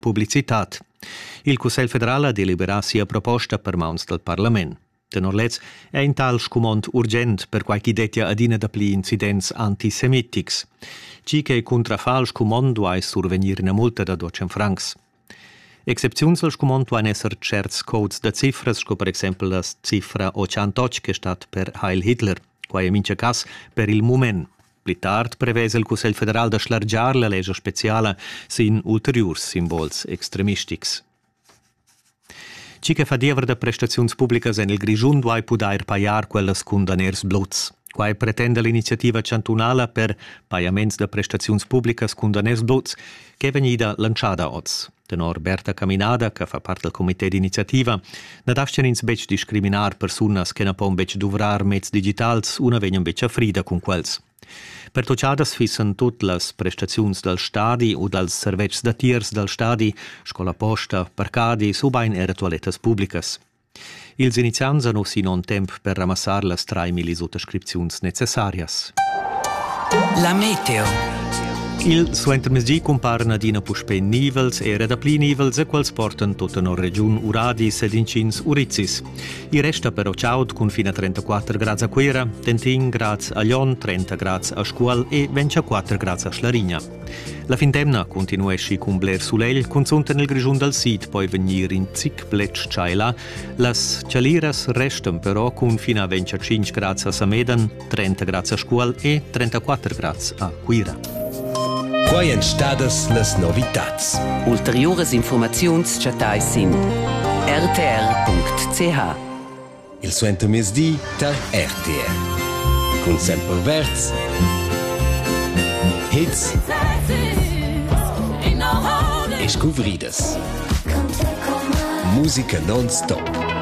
publicitad. Il Cussegl federal ha deliberà sia proposta per mauns dal parlament. Tenor lez è in tal scumond urgent per quai ch'i dettia adina dapli incidents antisemitics. Tgi che cuntrafà al scumond duai survegnir ina multa da 200 francs. Excepziuns al scumond duan esser certs codes da cifras, sco per exempel la cifra 88 che stat per Heil Hitler. Quai è mincha cas per il mument. Pli tard prevesa il Cussegl federal da schlargiar la lescha speciala sin ulteriurs simbols extremistics. Chi che fa diever da prestaziuns publicas en il Grischun duai pudair pajar quellas cun daners bluts. Quai pretenda l'iniziativa chantunala per pajaments da prestaziuns publicas cun daners bluts ch'è vegnida lantschada oz. Tenor Berta Caminada, che fa part dal comité d'iniziativa, na dastgan ins betg discriminar persunas che na pon betg duvrar meds digitals u na vegnan betg a frida cun quels. Pertutgadas fissan tut las prestaziuns dal stadi u dals servetschs datiers dal stadi, scola posta, parcadis ubain era tualettas publicas. Ils iniziants han uss in onn temp per ramassar las traimillis ottascripziuns necessarias. La meteo. Il suentermezdi cumparan adina puspè nivels e era dapli nivels e quels portan tot tenor regiun uradis ed inschins urizis. I resta però chaud cun fin a 34 grads a Cuera, Tentin grads a Lyon, 30 grads a Scuol e 24 grads a Schlarigna. La findemna continueschi cun bler sulegl, cunzunt en il Grischun dal sid poi vegnir in zic bletsch tschaila. Las chaliras restan però cun fin a 25 grads a Samedan, 30 grads a Scuol e 34 grads a Cuira. Quai èn stadas las novitads. Ulteriuras informaziuns chattais sin rtr.ch. il suentermezdi tar RTR cun Sempre Verz Hits e scuvridas. Musica non-stop